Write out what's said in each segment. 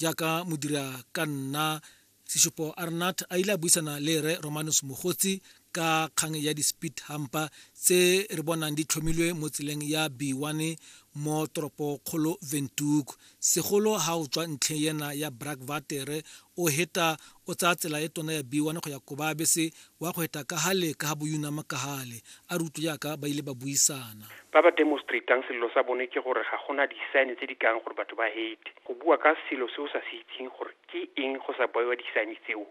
jaaka modira ka nna seshupo arnat a ile a buisana le re romanus mogotsi ka kgang ya di-speed hampa tse re bonang di tlhomilwe mo tseleng ya b1 mo toropokgolo ventuk segolo ha o tswa ntlheng ena ya brak vatere o heta o tsaya tsela e tona ya b1 go ya kobabese Wa go eta ka hale ka ha boyunama ka hale, a re utlwe jaaka ba ile ba buisana. Ba ba demostrateang selelo sa bone ke gore ga go na disaene tse di kayang gore batho ba hate. Go bua ka selo se o sa se itseng gore ke eng go sa baiwa disaene tseo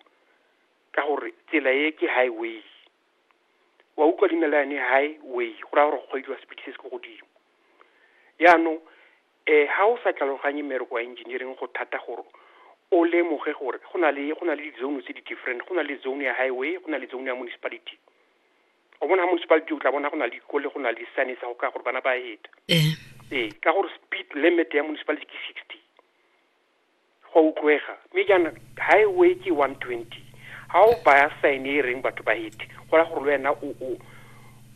ka gore tsela e ke high way. Wa utlwa di na le yane high way go raya gore go kgweediwa speed se se ko godimo. Yaanong E, ha o sa tlhaloganye mmereko wa engineering go thata gore o lemoge gore go na le go na le di-zone tse di-different go na le zone ya highway go na le zone ya municipality o bona ha municipality o tla bona go na le ko le go na le sane sa go ka gore bana ba heta ee ka gore speed limit ya municipality ke sixty Go a utlwega. Mme jaana, Highway ke 120. Ga o baya sign e e reng batho ba hete, go raya gore le wena o, o,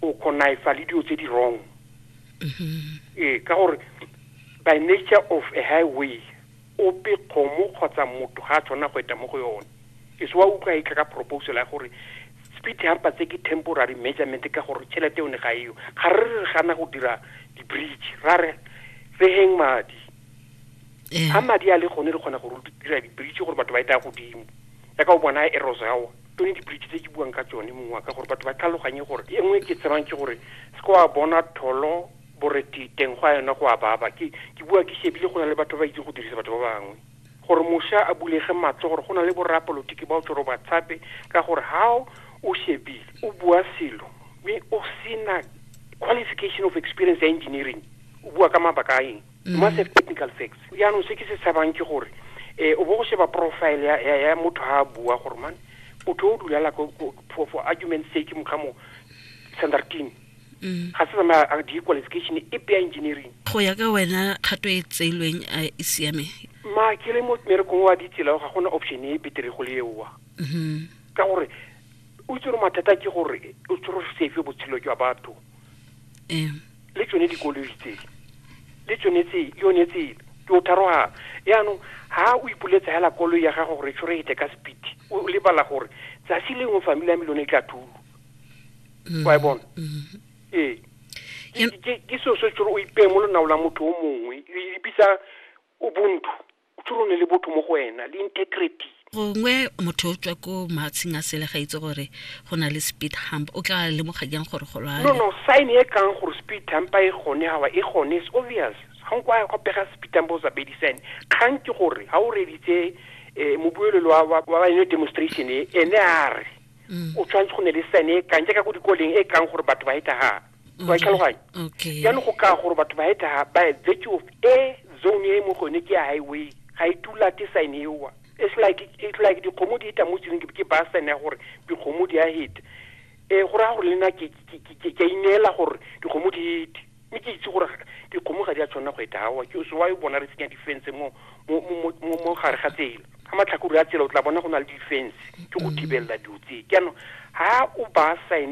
o connifa le dilo tse di wrong. Ee, ka gore by nature of a highway, ope kgomo kgotsa motho ga a tshwanela go eta mo go yone. E se wa utlwa e tla ka proposal ya gore speed humper tse ke temporary measurement ka gore tšhelete yone ga eyo. Ga re re re gana go dira di-bridge, ra re re heng madi. a madi a le gone re kgona gore dira dibridge gore batho ba etaya godimo ya ka o bona e rosawa tone dibridge tse ke buang ka tsone mongwe ka gore batho ba tlhaloganye gore e nngwe ke tsebang ke gore se ko wa bona tholo boreti teng go a yona go a baba ke ke bua ke shebile go na le batho ba itse go dirisa batho ba bangwe gore mosha a bulege matlo gore go na le borapolotiki ba o tsoro ba tshape ka gore how o shebile o bua selo mme o sena qualification of experience ya engineering o bua ka mabaka a eng mm. massive technical facts yaanong se ke se tshabang ke gore eh o bo go sheba profile ya ya, ya motho ha bua gore man o tlo dulala ko for, for argument sake mo kamo standard team mm. ga se tsamaya a di qualification e pia engineering go ya ka wena kgato e tseilweng a e siame ma ke le mo merekong wa ditsela ga gona option e betere go le ewa mm-hmm. ka gore o itse gore mathata ke gore o tsoro safe botshelo jwa batho le tsone dikoloi tse le tsone tse yone tsele ke o tharogana yaanong ha o ipoletsa hela koloi ya gago gore tshore ete ka speed o lebala gore tsatsi lengwe family ya me lone e tla thulo mm-hmm. wa e bona mm-hmm. ee ke seo se tsore o ipeye mo lonao la motho o mongwe le bitsa ubuntu O tshwere o ne le botho mo go wena, le integrity. Gongwe motho o tswa ko maatsheng a sele ga itse gore go na le speed hump, o tla lemoga jang gore go lwale? No, no, sign e kang gore speed hump e gone, awa e gone, it's obvious. Ga nko a ya go pega speed hump o sa bedi sign. Kgang ke gore ha o reeditse um mobuelelo wa wa wa yone demonstration e, ene a re o tshwanetse go ne le sign e kang jaaka ko dikoleng e kang gore batho ba heta ha. wa mm-hmm. tlhaloganya okay jaanong go ka gore batho ba eta ba vectio of e zone e mo gone ke ya highway ga e tula ke sign ewa it's like it's like dikgomo di eta mo tseleng ke ba sign ya gore dikgomo di a heta e go raya gore le nna ke ke ineela gore dikgomo di hete mme ke itse gore dikgomo ga di a tshwanela go eta awa ke so wa e bona re tsenya difense mo mo gare ga tsela ga matlhakore a tsela o tla bona go na le difense ke go mm. thibelela dilo tse jaanong ha o ba sign